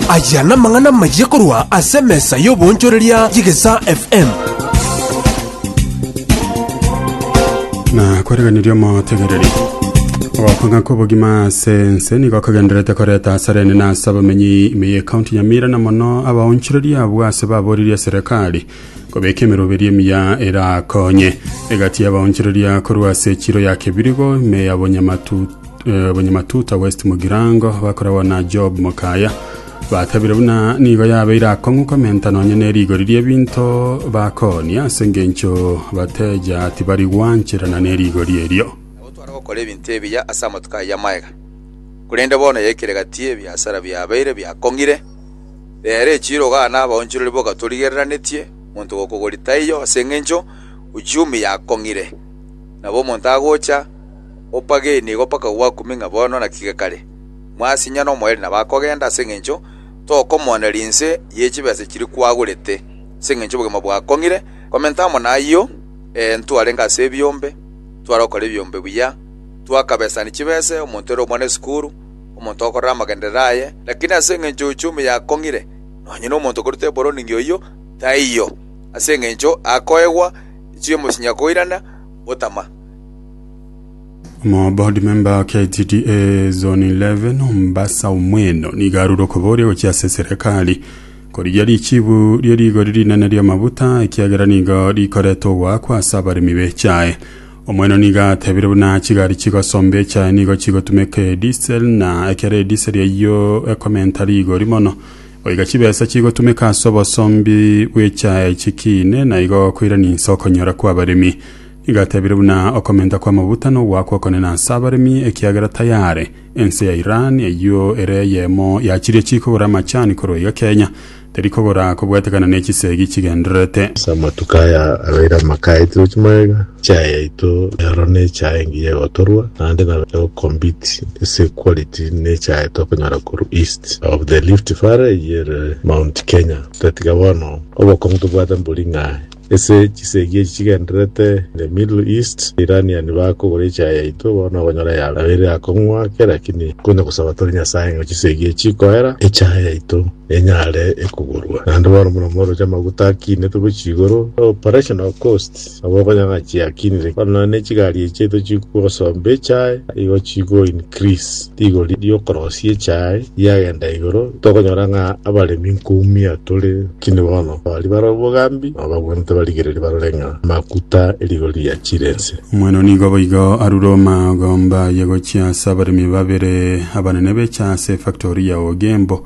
Aya namang'ana amayia korwa ase emesa y'oboonchoreria y'Egesaa FM. na kwereganeria omotegereri ogokanga kw'obogima ase ense nigo kogenderete koreta asara enene ase abamenyi ime y'ekaunti ya mira na mono abaonchoreria abwo ase baboririe serikali Kobeka emeroberi emiya erakonye egati y'abaonchoreria korwa ase echiro ya Kebirigo, ime ya Bonyamatu- eh, Bonyamatuta West Mugirango, bakoragwa na Job Mokaya. Batabire buna nigo yabeire akong'u komenta nonye ne rigori ri'ebinto bakoonia ase engencho bateja tibari gwancherana ne rigori erio. Nabo twara gokora ebinto ebiya ase amatuko ayio amagega. Korende bono yaikire gati y'ebiasara biabeire biakong'ire. Reera echiiro gana abaonchorori bogatorigereretie, monto gokogori taiyo, ase engencho uchumi yakong'ire. Nabo omonto agocha, opageni nigo mpaka gwakumi ng'a bono naki gekare. Mwasinyana omoerio nabo akogenda, ase engencho tokomoonera inse ye chibesa chiria kwagorete, ase engencho obogima bwakong'ire. Komenta amo nayio, ee, ntwarenge ase ebiombe, ntwarokora ebiombe buya, twakabesani chibese, omonto ere omwana esukuru, omonto okorora amagenderero aye, lakini ase engencho y'ochoomi yakong'ire, nonya nomonto okoruta eboroningi oyio taiyo, ase engencho akoegwa echiwi y'omosinyi akoirana gotama. Omoboard member wa KTDA Zone 11 Mombasa Omweno nigo arure okoboria gochia ase serekari korigia richibu rie rigori rinene ri'amabuta ekiagera nigo rikoreta ogoakwa ase abaremi b'echae. Omonene nigo atebire buna chigari chigosomba echae nigo chigotumeka edisel, na ekero edisel eyio ekomenta rigori mono, goika chibesa chigotumeka ase obosombi bw'echae chikiine, na igo koirani inse okonyora kw'abaremi. Nigo atebire buna okomenta kw'amabuta nogoakwa okonene ase abaremi, ekiagera tayare ense ya Iran eyio ere eyemo ya chiria chikogora amachani korwa iga Kenya, Tari kogora kobwatekana ne chisegi chigendererete. Ase amatuko aya abeire amaka aito gochia magega, echae yaito rero ne echae engiya egotorwa naende nabo egocompete ase quality ne echae tokonyora korwa East of the Rift Valley eye ere Mount Kenya. Otatiga bono obokong'u tobwate mbori ng'aye. Ase chisegi echi chigendererete the middle east, Iranian bakogora echae yaito bono okonyora yarabeire akong'wa ake lakini konya gosaba tore Nyasae ng'a chisegi echi koera echae yaito enyare ekogorwa. Naende bono buna omorochi amaguta akinetwe gochia igoro, operational costs, nabo okonyora ng'a chiakinire. Bono nonya ne chigari echi chiaito chigosomba echae igo chigo increase. Rigori ri'okorosia echae riagenda igoro, tokonyora ng'a abaremi nkoumia tore kini bono, baria bare obogambi na obagwenerete barigererie barore ng'a amakuta e rigori riachire ense. Omwana oo nigo boigo arure omagomba aye gochia ase abaremi babere abanene b'echae ase efactori ya Ogembo.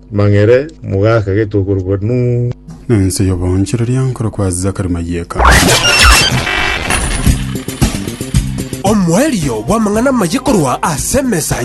Mang'ere mogaaka gete okorokwa Nuhu. Na ense y'oboonchoreria nkorokwa Zakari Mayeka. Omoerio bw'amang'ana amaya korwa ase emesa